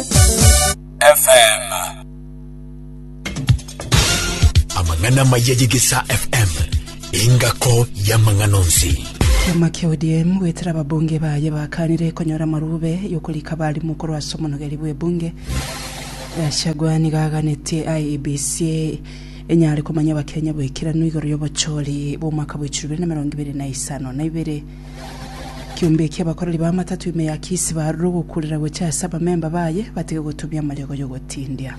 FM. amang'ana amaya y'egesa fm engako y'amang'ana onsi Kiama kia ODM gwetera ababunge baye bakanire konyora amarube yokorika abarimu korwa ase omonogeri bw'ebunge. Gachagua nigo aganetie IEBC enyare komanya abakenya bw'ekeranu igoro y'obochori bw'omwaka bwa 2025 na ibere Kiombe ekia abakoreri b'amatato ime ya Kisi baarure ogokuurera gochia ase abamemba baye batige gotumia amariogo y'ogotindia.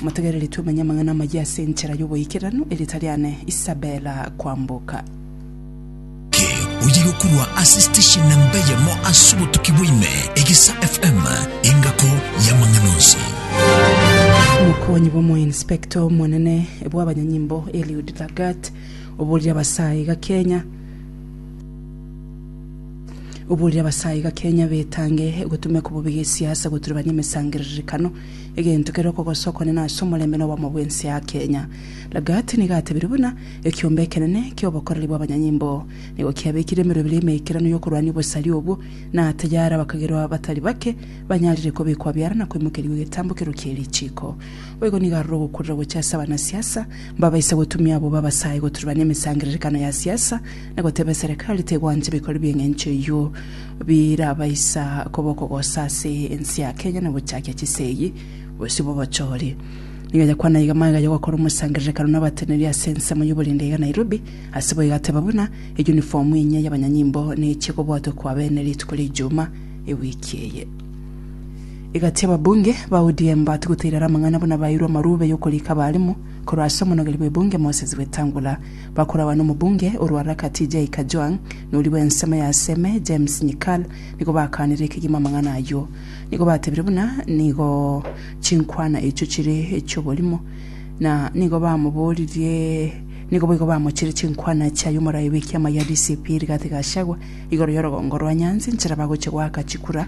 Motegereri twemenye amang'ana amayia ase enchera y'oboikeranu erio tariane Isabella kwamboka. Ki oyiga korwa ase station namba eyemo ase obotuki bwa ime, Egesa FM, engako y'amang'ana onsi. Omokuani bw'omoinspector omonene bw'abanyanyimbo Eliud Lagat oborire abasae iga Kenya Oborire abasaai iga Kenya betange gotumia kobobe gesiasa goturebania emesangererekano, egento kere okogosa okonene ase omorembe na obwamo bwense ya Kenya. Lagat nigo atebirie buna ekiombe ekenene kiobokoreri bwabanyanyimbo nigo kiabekire emerwa ebere emeikeranu yokorwania obosari obwo, na tayari abakagerwa batari bake banyarire kobekwa biara na koimokerigwa egetambo kerokia erichiko. Boigo nigo aroro ogokurera gocha ase abanasiasa Mbabaise gotumia abwo babasae goturbana emesangererekano ya siasa na goteba eserekari tegwancha ebikori bi'eng'encho eyio birabaisa koba okogosa ase ense ya Kenya na ogochakia chisegi bosio bw'obochori. Nigo yakwana iga magega yogokora omosangererekano n'abateneri ase ensemo y'oborende iga Nairobi, ase bo egateba buna eyunifomu enyia y'abanyanyimbo nechie kobwatwa kwa bene rituko ri'Ijumaa ewiki eye. Egati ababunge ba ODM batwo goteirara amang'ana buna baeirwe amarube yokorika abarimo korwa ase omonogeri bw'ebunge Moses Wetangula bakorawa nomobunge orwa Raka TJ Kajwang' nori bw'ensemo ya Seme James Nyikal nigo bakaanire ekegima amang'ana ayio nigo batebire buna nigo chinkwana echio chire echi'oborimo na nigo bamoboririe nigo boigo bamochire chinkwana chia yomorai bw'ekiama gia DCP Rigathi Gachagua igoro yorogongo rwa Nyanzi nchera bagochia goaka chikura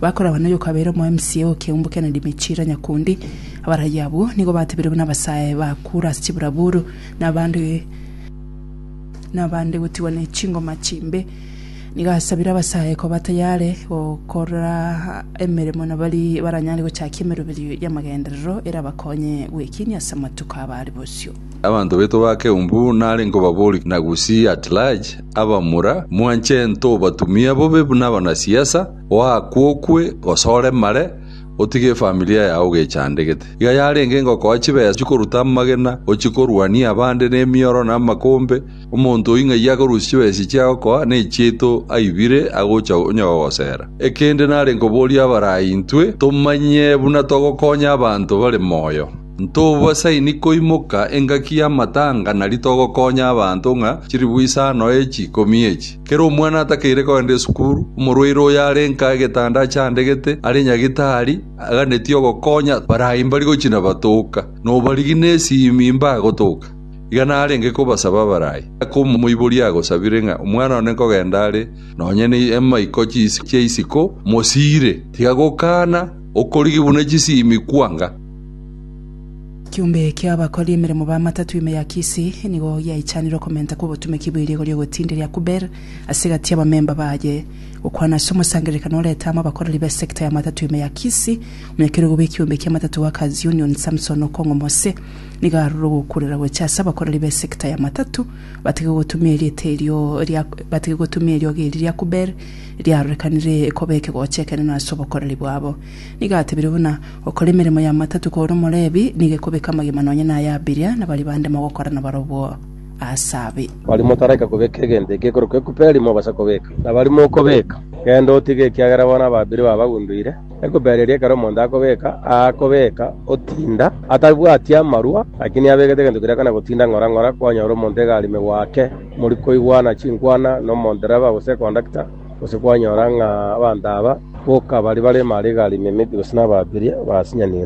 Bakoragwa noyo okabeire omoMCA o Kiaumbu Kennedy Michira Nyakundi. Abaraiyo abwo nigo batebire buna abasae ba kura ase chiburaburu nabande gotigwa ne chingoma chimbe. Nigo asabire abasae koba tayare gokora emeremo na bari baranyare gochakia emeroberio y'amagenderero erabakonye gwekinia ase amatuko aba are bosio. Abanto baito ba Keumbu nare nkobabori na Gusii at large abamura mwanche ntobatumia bobe buna abanasiasa. Oakwokwe gose oremare, otige efamilia yao ogechandegete. Iga yarenge ngokoa chibesa chikoruta amagena, ochikorwania abande nemioro na amakombe. Omonto oyio ng'ai akorusia chibesa echi agokoa, na echiaito aibire agocha onye gogosera. Ekende nare nkoborie abarai intwe tomanye buna togokonya abanto bare moyo. Ntobasaini koimoka engaki y'amatanga na ritogokonya abanto ng'a chiribu isano echi ikomi echi. Kera omwana atakeire kogenda esukuru, omorwaire oyo are nka egetanda achandegete are nyagitari, aganetie ogokonya barayi mbari gochia nabatoka, nobarigi nesimi mbagotoka. Iga narenge kobasaba abarayi, aka omoibori agosabire ng'a omwana one nkogenda are nonye nemaiko chia isiko, mosiire, tiga gokana, okorigi buna chisimi kwanga. Kiombe ki'abakori emeremo b'amatatu ime ya Kisii nigo giaichanire okomenta kw'obotumeki bw'eriigo ri'ogotindiria Kuber ase egati y'abamemba baye. Gokwana ase omosangererekano oreta amo abakoreri b'esekta y'amatatu ime ya Kisii, omonyakerogo bw'ekiombe ki'amatatu Workers Union Samson Okong'o Mose nigo arure ogokurera gocha ase abakoreri b'esekta y'amatatu batige gotumia erieta erio ria batige gotumia eriogi eri ria Kuber riarorekanire koba ekegocha ekenene ase obokoreri bwabo. Nigo atebire buna, Gokora emeremo y'amatatu kore Omolevi nigo ekobeka amagima nonya na ay'abiria, na baria bande mogokora nabarobwo aase abe. Baria motaraika kobeka egento ekekorokwa ekuperi mobasa kobeka, na baria mokobeka, genda otige, ekiagera bono ababiria babagundoire. Ekuperi eria ekero omonto akobeka, aakobeka otinda, atabwati amarwa, lakini abegete egento keria akana gotinda ng'ora ng'ora, kwanyora omonto egari megwake, morikoigwana chinkwana, nomondereba, gose ekondakta, Gose kwanyora ng'a abanto aba boka baria bare Mariga Arimemiti gose nababirie basinyanire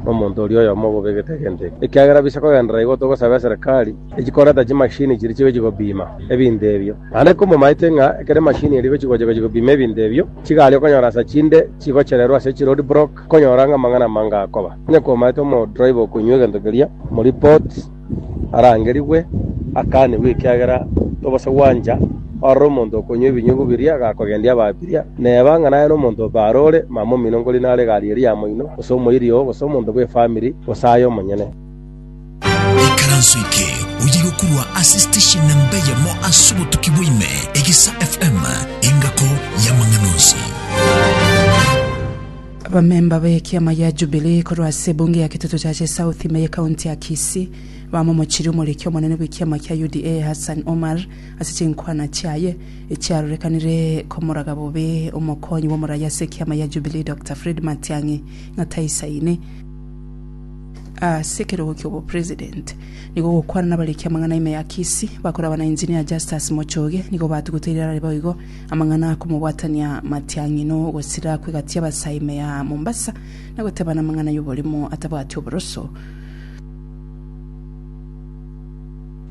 nomonto oria oyomo obobegete egento eke. Ekiagera bise kogenderera igo togosaba eserekari echi koreta chimashini chiria chigochia kobima ebinto ebio. Naende komomaete ng'a ekero emashini eria egochia gocha gochia kobima ebinto ebio, chigari okonyora ase chinde chigochererwa ase chiroad block konyora ng'a amang'ana amange akoba. Onye komaete omodriver okonywa egento keria, moreport. arangerigwe, akanigwe, ekiagera tobaasa gwancha ororo omonto okonywa ebinyugu biria agakogendia ababiria, neba ng'a naye nomonto obe are ore mamomino nkori nare egari eria ya moino, gose omoiri oo, gose omonto bw'efamiri, gose aye omonyene. Ikaranso eke oyigokorwa ase station na mbe yamo ase obotuki bwa ime, Egesa FM, engako y'amang'ana onsi. Abamemba b'ekiama gia Jubilee korwa ase ebunge ya Kitutu Chache South ime ye county ya Kisii bamomochirie omoriki omonene bw'ekiama kia UDA Hassan Omar ase chinkwana chiaye echiarorekanire komoraga bobe omokonyi bw'omoraia ase ekiama gia Jubilee Doctor Fred Matiang'i ng'a taisaini ase ekerogo ki'obopresident. Nigo ogokwana nabariki amang'ana ime ya Kisii bakorabana Engineer Justus Mochoge nigo batuguteire arare boigo Amang'ana akomobwatania matiang'ino gosira kwegatia abasaa ime ya Mombasa na gotebana amang'ana y'oborimo atabwati oboroso.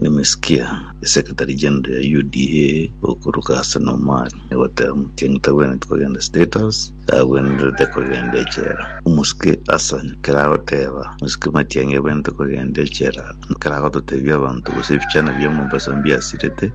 Nimesikia esekretari general ya UDA okoruka ase na Omari egoteba Matiang'i tagwenereti kogenda state house agwenerete kogenda echela. Omosike Hassan keragoteba mosike Matiang'i agwenerete kogenda echela keragototebia abanto gose ebichana bia Mombasa mbiasirete.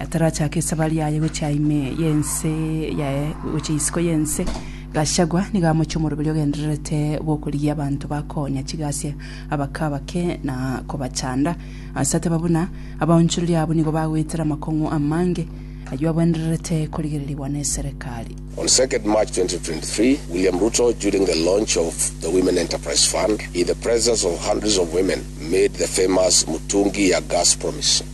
Atarachake esaba riaye gochia ime y'ense yaye gochia isiko y'ense, Gachagua nigo amochia omoroberi ogendererete bw'okorigia abanto ba koonya chigasia abake abake na kobachanda. Ase ateba buna abaonchoreria abwo nigo bagoetera amakong'u amange ayio abwendererete korigererigwa n'eserekari. On second March 2023, William Ruto during the launch of the Women Enterprise Fund in the presence of hundreds of women made the famous Mutungi ya Gas promise.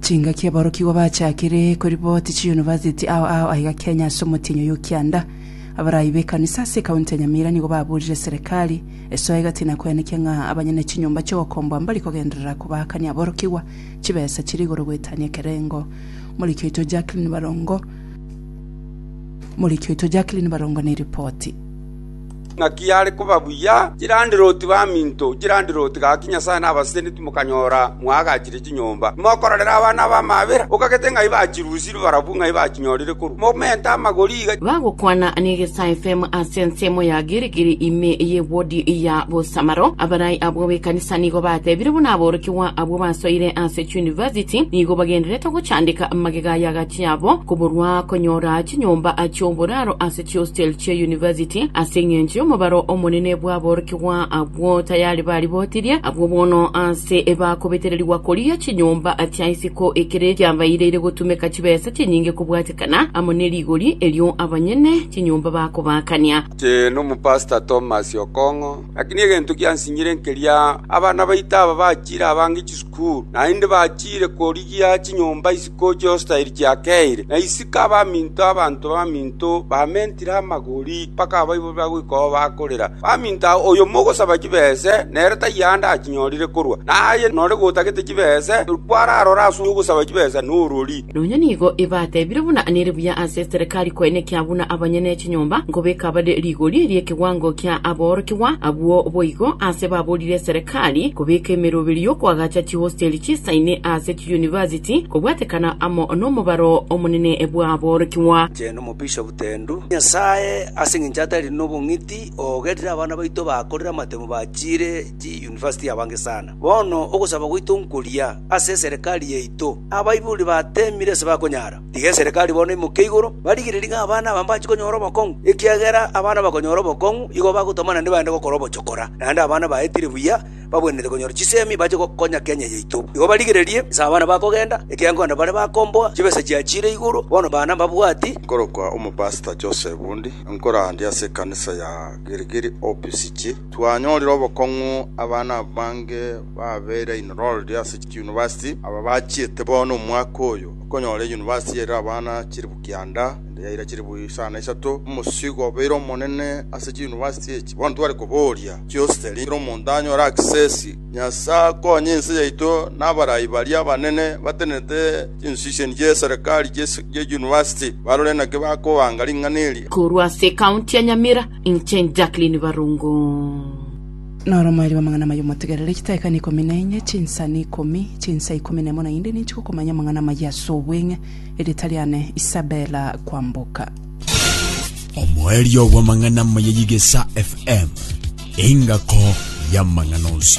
Chingaki aborokigwa bachakire koriboti chiyunivasiti ao ao aiga Kenya ase omotienyi oyo o kianda. Abarai b'ekanisa ase ekaunti ya Nyamira nigo baburire serekari esoe gati na koenekia ng'a abanyene chinyomba chi'ogokomboa mbari kogenderera kobaakania aborokigwa chibesa chire igoro goetania ekerengo. Omoriki oito Jacqueline Barongo neripoti. Naki are koba buya chirandiroti baminto, chirandiroti gaki Nyasae nabasesenitie mokanyora mwaagachire chinyomba. Timokororera abana b'amabera, okagete ng'ai bachirusire barabwo ng'ai bachinyorire korwa momento amagori iga. Bagokwana negesae fm ase ensemo ya Girigiri ime y'ewodi ya bosamaro. Abarai abwo b'ekanisa nigo batebire buna aborokigwa abwo basoire ase chiyunivasiti nigo bagendererete gochandeka amagega y'agachi yabo koborwa konyora chinyomba chi'oboraro ase Ciustelte University, ase engencho y'omobaro omonene bw'aborokigwa abwo tayari baribotirie, abwo bono aase bakobetererigwa koria chinyomba chia isiko ekere kiabaireire gotumeka chibesa chinyinge kobwatekana amo ne rigori erio abanyene chinyomba bakobaakania. Inche nomopastor Thomas Okong'o, lakini egento giansinyire nkeria, abana baito aba bachiire abange chisukuru, naende bachiire korigia chinyomba isiko. Gochia ostairi chiakeire, na isiko abaminto abanto baminto bamentire amagori mpaka abaiborire goika aho bakorera. Baminto aa oyo mogosaba chibese, nere taiyo aande achinyorire korwa, na aye nore gotagete chibese, rikwararore ase ogosaba chibese norori. Nonya nigo ebatebire buna nere buya ase eserekari koenekia buna abanyene chinyomba nkobeka bare rigori ri'ekewango kia aboorokigwa abwo boigo ase baborire eserekari kobeka emeroberio koagacha chihostairi chisaine ase University, kobwatekana amo nomobaro omonene bw'aborokigwa. Inche nomobishop tendu Nyasae ase engencho atari nobong'iti ogerire abana baito bakorire amatemo bachiire chi university abange sana. Bono ogosaba gwaito nkoria ase eserekari yaito abaibori batemire ase bakonyara. Tiga eserekari bono emoke igoro barigererie ng'a abana aba mbachi konyora obokong'u ekiagera abana bakonyora obokong'u igo bagotamana nebaende gokora obochokora naende abana baetire buya bagwenerete konyora chisemi bache gokonya Kenya yaito. Igo barigererie, nse abana bakogenda, ekiagera nkogenda bare bakomboa, chibesa chiachiire igoro, bono bana mbabwati. Nkorokwa Omopastor Joseph Bundi, nkorandia ase ekanisa ya Girigiri OPCG. Twanyorire obokong'u abana abange babeire enrolled ase chiuniversity, aba bachiete bono omwaka oyo. Okonyora eyunivasiti yaira abana chilifu kianda, ende yaira chilifu isano na isato, omosigo obeire omonene ase chiuniversity echi. Bono tware koboria. Chiostery kera omonto anyore access. Nyasae akonye ense yaito na abarai baria abanene batenenete chinstitution chie serikali chie university barore naki bakobanga ring'ana eri. Korwa ase ekaunti ya Nyamira, inche Jacqueline Barungu. Noro mwareba amang'ana amaya omotegerere chitaika na ikomi na enye, chinsa na ikomi, chinsa ikomi na emo naende ninche gokomanya amang'ana amaya ase obweng'e. Erieta riane Isabella Kwamboka. Omoerio bw'amang'ana amaya y'Egesa FM, engako y'amang'ana onsi.